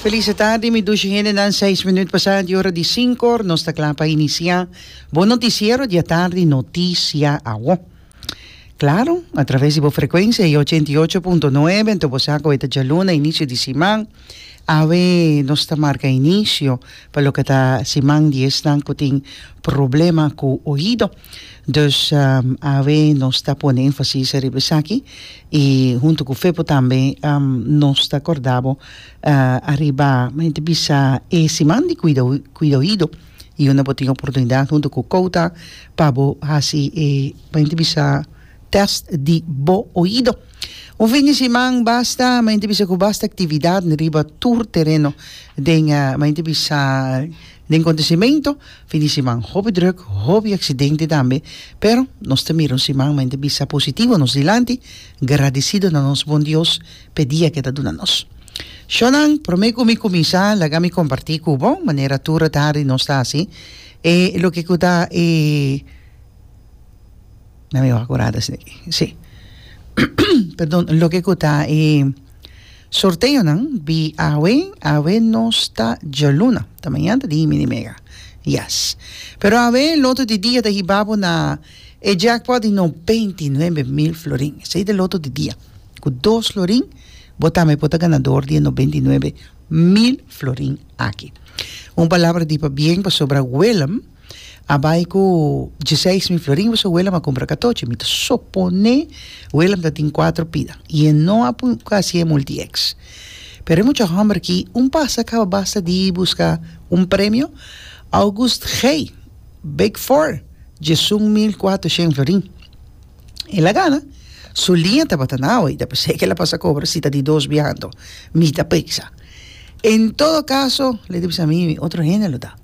Feliz e tardi mi dushi hendenan seis minüt pasá di ora di sinkor nos ta kla pa inisiá bo notisiero di atardi noticia awor claro a traves di bo frekuensia e ochenta i ocho punto nuebe ento bo sa koe ta djaluna inisio di siman awe nos ta marka inisio pa loke ta siman di esnan ku tin problema ku oido. Dus awe nos ta pone énfasis riba esaki i huntu ku Fepo tambe nos ta kòrdá bo ariba mente bisa e siman di kuidoido i unda bo tin oportunidat huntu ku Kouta pa bo hasi e mente bisa tèst di bo oido. Un fin di siman basta mente bisa ku basta aktividatnan riba tur tereno den mente bisa Den kontesimentu fin di siman hopi druk, hopi aksidente tambe, pero nos ta mira un siman mente bisa positivo nos dilanti, gradisido na nos Bon Dios p'e dia ke ta duna nos. Shonan, promé ku mi kuminsá laga mi kompartí ku bo, manera tur e tardi nos ta hasi, e loke ku ta e, na mi wak kurá desde aki, si, perdon, loke ku ta e. Sorteonan di awe, awe nos ta djaluna, ta mañan ta di himi di mega. Yes. Pero awe loto di dia ta hiba bo na e jackpot di noventa i nuebe mil florin. Esei ta e loto di dia. Ku dos florin bo tambe por ta ganador di e noventa i nuebe mil florin aki. Un palabra di pabien pasobra Willem. a bai ku djeseis mil florin i boso wela mi a kumpra katochi mi ta suponé wela mi ta tin kuatro pida i e no a pui ku hasi e multi eks pero e mucha hòmber aki un pas a kaba basta di buska un premio August Gey big four diesun mil kuatroshen florin el a gana su liña tabata na awa i ta p'esei ku el a pasa a kobra si ta di dos biaha anto mi ta peksa en todo kaso lo ke ta bisa mi otro hende lo ta.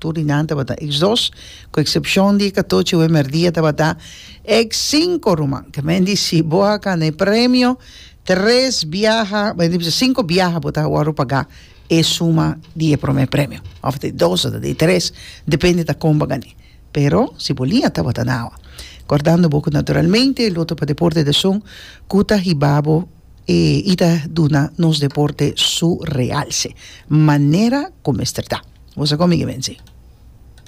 Tur di nan tabata ex dos, ku eksepshon di katochi wemer dia tabata ex sinku ruman. Ta menti si bo a kana e premio tres biaha, menti bisa sinku biaha bo ta wòrdu a pagá e suma di e promé premio òf di e dos òf ta di e tres depende ta kon bo a gan'é. Pero si bo lia tabata nada. Kòrdando bo ku naturalmente loto pa deporte ta esun ku ta hiba bo. E i ta duna nos deporte su realce manera cu mester ta. Bo sa con mi, Guibensi?